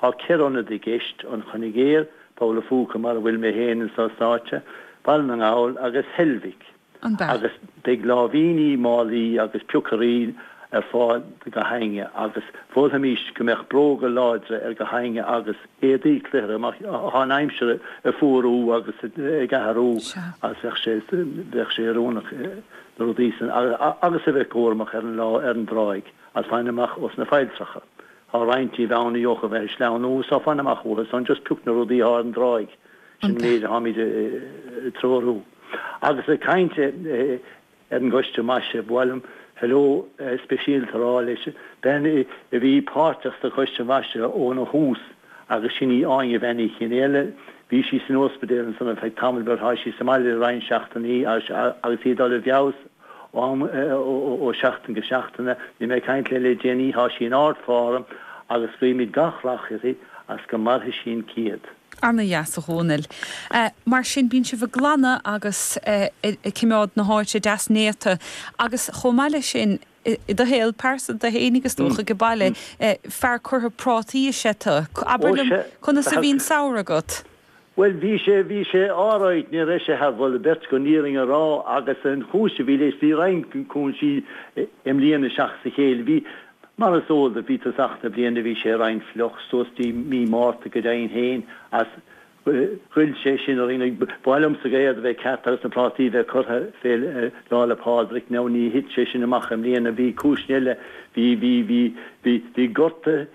Thá ceithre ionad i gceist, An Coinigéar, Poll a' Phúca mar a bhfuil mé féin anso sáite, Baile na nGall agus Heilbhic, agus beidh láimhíní, málaí agus piocairí ar fáil do gach éinne, agus mholfaimíst go mbeadh bróga láidre ar gach éinne agus éadaí cluthara mar thá an aimsir ag fuarú agus ag athrú agus bheadh sé oiriúnach na rudaí san agus a bheith cúramach ar an dtráigh agus fan amach ó sna failltreacha. thá roinnt díobh ana thugtha a bheith ag sleamhnú so fan amach uathu san, just pioc na rudaí atá ar an dtráigh sin an méid atháimid ag treorú. Agus ag caint ar an gcoiste maise, ba mhaith liom hello speisialta a rá leis bean a bhí páirteach sa choiste maise óna thús agus sin í Áine bhean Uí Chionnfhaolaidh, bhí sí san óspaidéal ansan ar feadh tamall but thá sí sa mbaile le roinnt seachtainí agus í ag dul i bhfeabhas, Am ó sheachtain go seachtain, bhí mé ag caint léi le déanaí, thá sí in ard form agus guímid gach rath uirthi agus go mairfidh sí an céad. Ana dheas a Dhomhnaill. Mar sin bíonn sibh ag glanadh agus ag coimeád na háite deas néata agus chomh maith leis sin, i do shaol pearsanta fhéinig is dócha, ag an baile, fear curtha prátaí is ea tu. Abair liom, conas a bhí an samhradh agat? Bhuel, bhí sé, bhí sé alright, ní raibh sé thar mholadh beirte chun an fhírinne a rá agus an chúis a bhí leis, bhí roinnt cúinsí i mbliain seachas a chéile, bhí, mar is eol duit, bhí tosach na bliana, bhí sé roinnt fliuch suas dtí mí Márta go deimhin féin agus ghoill sé sin orainn ag, b'fhearr liomsa gach aon rud a bheith ceart agus na prátaí a bheith curtha fé Lá 'le Pádraig now ní thit sé sin amach i mbliana, bhí cúiseanna eile, bhí, bhí, bhí, bhí, bhí gorta,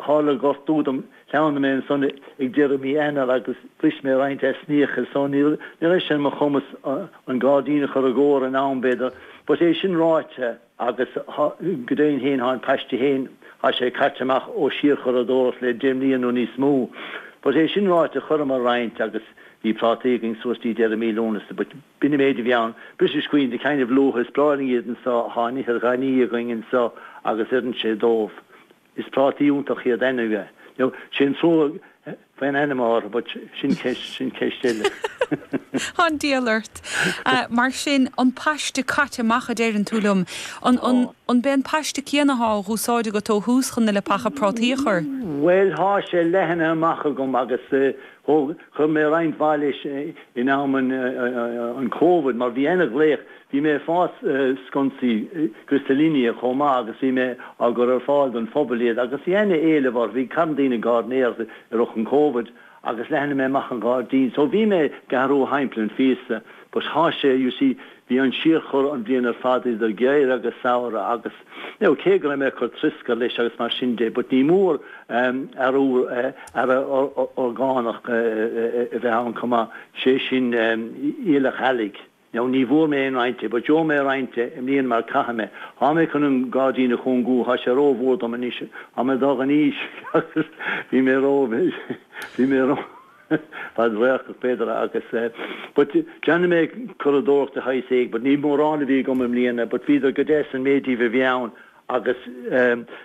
tharla gortú dom. Shleamhnaigh mé ansan ag deireadh mhí Eanáir agus bhris mé roinnt easnaíocha so ní raibh sé ar mo chumas an gairdín a chur i gcóir in am b'fhéidir but é sin ráite agus go deimhin fhéin thá an paiste fhéin thá sé caite amach ó síorchuradóireacht le deich mbliana nó níos mó but é sin ráite chuireamar roinnt agus bhí prátaí againn suas dtí deireadh mí Lúnasa but b'in an méid a bhí ann. British Queen, the kind of luath is breá linn iad anso thá an ithir ghainí againn anso agus oireann sé dóibh. Is prátaí iontach iad anyway. Now, sin trua faoin ainm athá orthu but sin ceist, sin ceist eile. Tá an diabhal ort. Mar sin, an paiste caite amach a deireann tú liom. An, an, an b'é an paiste céanna athá á dh'úsáid agat ó thús chun na leapacha prátaí a chur? Bhuel, thá sé leathnaithe amach agam agus thóg, chuir mé roinnt mhaith leis in am an, an, an Covid mar bhí ana ghlaoch Bhí mé ag fás sconsaí Griselinia chomh maith agus bhí mé á gcur ar fáil don phobal iad agus bhí ana éileamh orthu. Bhí carn daoine ag garnóireacht i rith an Covid agus leathnaigh mé amach an gairdín. So bhí mé ag athrú thimpeall an phíosa but tá sé, you see, bhí an síorchur an bhliain ar fad idir geimhreadh agus samhradh agus you know cé go raibh mé ag cur trioscair leis agus mar sin de but ní mór ábhar orgánach a bheith ann chomh maith, sé sin aoileach eallaigh. nó ní bhfuair mé aon roinnt de, but gheobha mé roinnt de i mbliana mar caithfidh mé. Tá mé chun an gairdín a chúngú, tá sé ró-mhór dom anois, tá mé ag dul in aois agus bhí mé ró, bhí mé ró fhad-radharcach b'fhéidir agus eh, but déanfaidh mé curadóireacht de shaghas éigin but ní mórán a bhí agam i mbliana but bhíodar go deas an méid díobh a bhí ann, Agus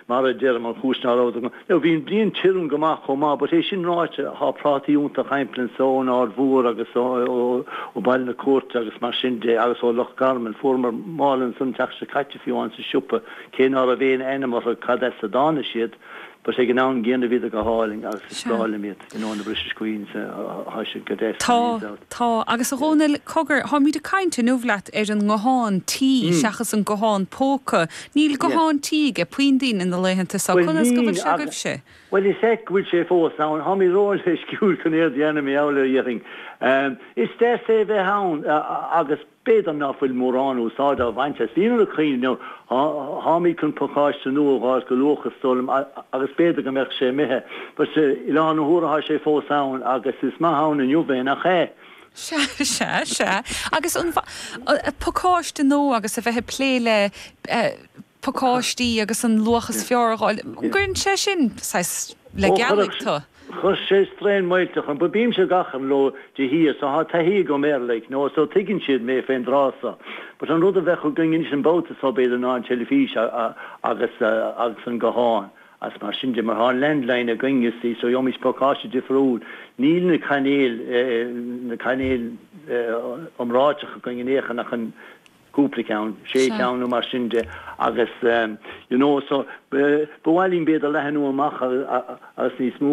mar a deirim, an chúis ná raibh, nó bhí an bhliain tirim go maith chomh maith, but é sin ráite, tá prátaí iontacha thimpeall anso ón Aird Mhór agus ó Bhaile na Cúirte agus mar sin de agus ó Loch Garman. Fuaireamar mála anso an tseachtain seo caite, fiú amháin sa siopa, cé ná raibh aon ainm orthu, cad as a dtáinig siad? But ag an am gcéanna bhíodar go hálainn agus is Sea. breá liom iad, you know, na British Queens, tá siad go deas, Tá, tá. Agus a Dhónaill, cogar, táimid ag caint inniu leat ar an nguthán tí seachas an guthán póca. Níl Yeah. guthán tí aige puinn daoine na laethanta seo. Bhuel Conas go bhfuil níl sé agus, agaibhse? bhuel is ait go bhfuil sé fós ann, táimid róleisciúil chun aird a dhéanamh, mé abhaile ó Iarthing. Is deas é a bheith ann agus. B'fhéidir nach bhfuil mórán úsáid á bhaint as líne na caoineadh inniu. Táimid chun pacáiste nua a dh'fháil go luath, is dóigh liom, agus b'fhéidir go mbeidh sé imithe. But, i láthair na huaire tá sé fós ann, agus is maith ann inniu é, nach ea? Sea, sea, sea. Agus an pacáiste nua agus a bheith ag plé le pacáistí agus an luach is fearr a dh'fháil. An gcuireann sé sin saghas le gealaigh tú? Chuir sé straidhn mhillteach orm. Bímse ag achrann leo de shíor so thá taithí agam air, like, no, so tuigeann siad mé fén dtráth so. But an rud a bheadh againn anois an babhta so, b'fhéidir, ná an teilifís agus, agus an guthán agus mar sin de mar thá an landline againn, you see, so gheobhaimid pacáiste difriúil. Níl na cainéil, na cainéil iomráiteacha againn in aon chor ach an, cúpla ceann, sé cheann nó mar sin de agus, you know, so ba mhaith linn b'fhéidir leathnú amach agus níos mó.